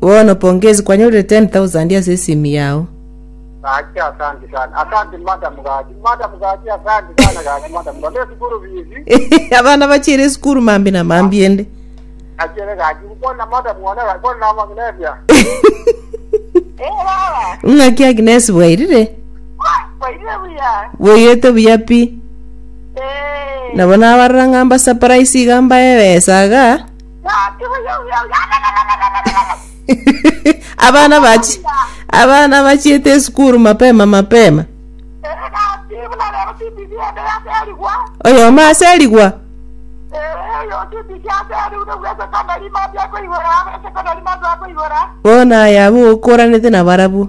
Bono pongezi kwanyorire ten thousand ase esimi yao. Gaki, Asanti sana. Asanti madam gaki. Madam gaki, Asanti sana gaki madam. Nonya esukuru bizi. Abana bachire esukuru mambi na mambi ende. Achere gaki. Bono na madam one gaki. Bono na Magnesia. Eh, baba. Ng'aki Agnes bwairire? Kwaire buya. Boyete buya pi. Eh. Nabo nabarora ng'amba surprise iga mbaebesa iga. abana bachi abana bachiete esukuru mapema mapema oyomo ase erigwa bono aye abwo okoranete nabarabwo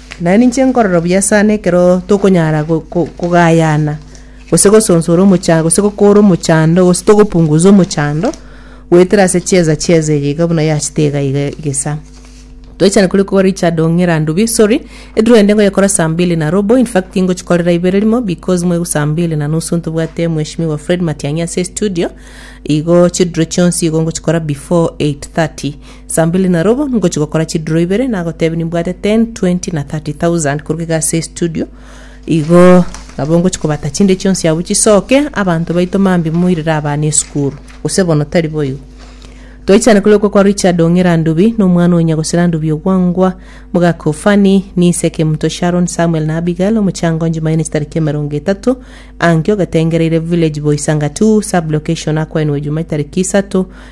Naende ninche nkorora buya sana ekero tokonyara go- go- kogayana, gose gosonsora omochando, gose gokora omochando, gose togopunguza omochando, goetera ase chiesa chiesa eye iga buna yachete iga iga egesa. Toechane kore kwa Richard Ong'ira Ndubi, sorry, ediro ende ngoyekora saa mbili na robo, in fact ingochikorera ibere rimo because mwa saa mbili na nusu ntobwate mweshimiwa Fred Matiang'i ase estudio, igo chidiro chionsi igo ngochikora before 8:30. Saa mbili na robo ngochia gokora chiduro ibere nagotebia nimbwate 10, 20 na 30,000 koruga iga ase estudio. Igo nabo ngochia kobata chinde chionsi abwo chisoke abanto baito mambi moirere abana esukuru. Gose bono tari boigo. Twaichana kore okwo kwa Richard Ong'era Ndubi na omwana o Nyagosera Ndubi Ogwangwa, mogaka o Fanny, Nise Kemuto Sharon, Samuel na Abigail omochango onye Jumanne chitariki emerongo etato, Ankio Gatengereire, Village Boys Angatu, Sub-location Akwaenwe Jumae tariki isato,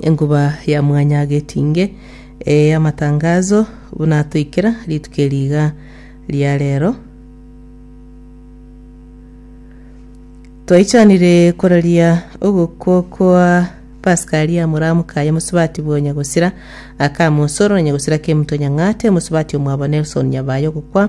Enkuba ya mwanya getinge y'amatangazo buna toikera rituko eri iga ria rero. Twaichanire koraria ogokwo kwa Pasika aria moramuka ya mosubati bwa Nyagosira aka mosoro na Nyagosira Kemto Nyang'ate mosubati omwabo Nelson Nyabayo gokwa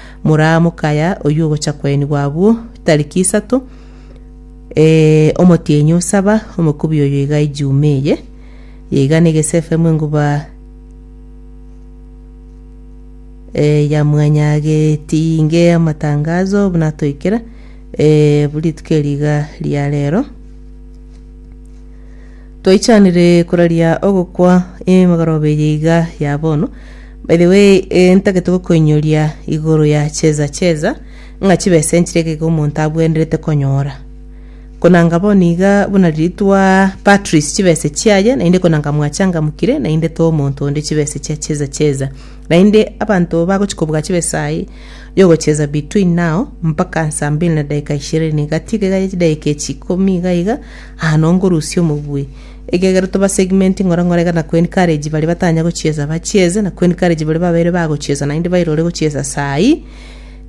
Moraa mokaya oyio ogocha koenigwa abwo tariki isato, ee, omotienyi o saba, omokubi oyo iga ejuma eye, yeiga negesefemu enguba eh, ya mwanyageti inge amatangazo buna toikera eh, rituko eri iga ria rero Twaichanire koraria ogokwa emegoroba eye iga ya bono. By the way, eh, ntagete gokoinyoria igoro ya cheza cheza ng'a chibesa enchire ekeke omonto abwenerete konyora. Konanga bono iga buna ritwa Patrice chibesa chiaye naende konanga mwachangamukire naende toa omonto onde chibesa chia cheza cheza. Naende abanto bagochi kobuga chibesa aye yogocheza between now mpaka saa mbili na dakika ishirini. Gatiga iga ya chidakika echi ikomi iga iga Aa nonkorusia omobui. Ekiagera toba segment ng'ora ng'ora iga na kuencourage baria batanya gochiesa bachiese na kuencourage baria babeire bagochiesa naende bairore gochiesa saai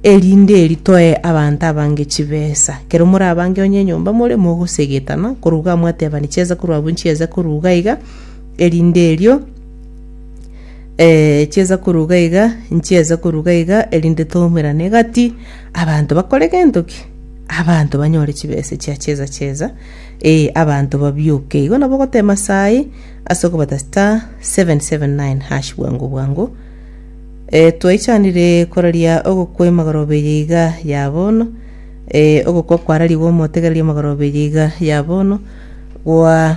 erinde ritoe abanto abange chibesa. Kero morabange onye enyomba more mogosegetana korwa iga mwatebani chiesa korwa abwo nchiese korwa iga iga erinde erio eh chiesa korwa iga iga nchiese korwa iga iga erinde tomerane gati Abanto bakore gento ki? Abanto banyore chibesa echia cheza cheza, ee, abanto babioke. Igo nabo ogotema saa eye ase okobata star 779 hash bwango bwango. E, twaichanire koraria ogokwa emagoroba eye iga ya bono e, ogokwa kwararigwe omotegereria emagoroba eye iga ya bono gwa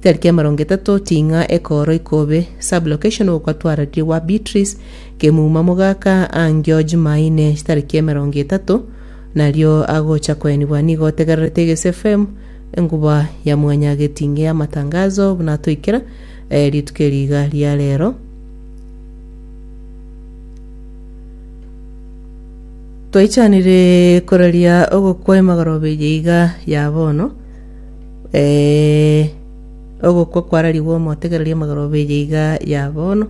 Tari kiamarongo etato ting'a ekooro ikobe sub-location ogokatwara riwa Beatrice kemuuma mogaka angio Jumaine chitari kiamarongo etato nario agocha koenigwa nigo otegererete Egesu FM enguba ya mwanya getinge amatangazo buna atoikera eh, rituko eri iga ria rero Twaichanire koraria ogokwa emagoroba eye iga ya bono Ee, ogokwa kwararigwe omotegereri amagoro beye iga ya bono.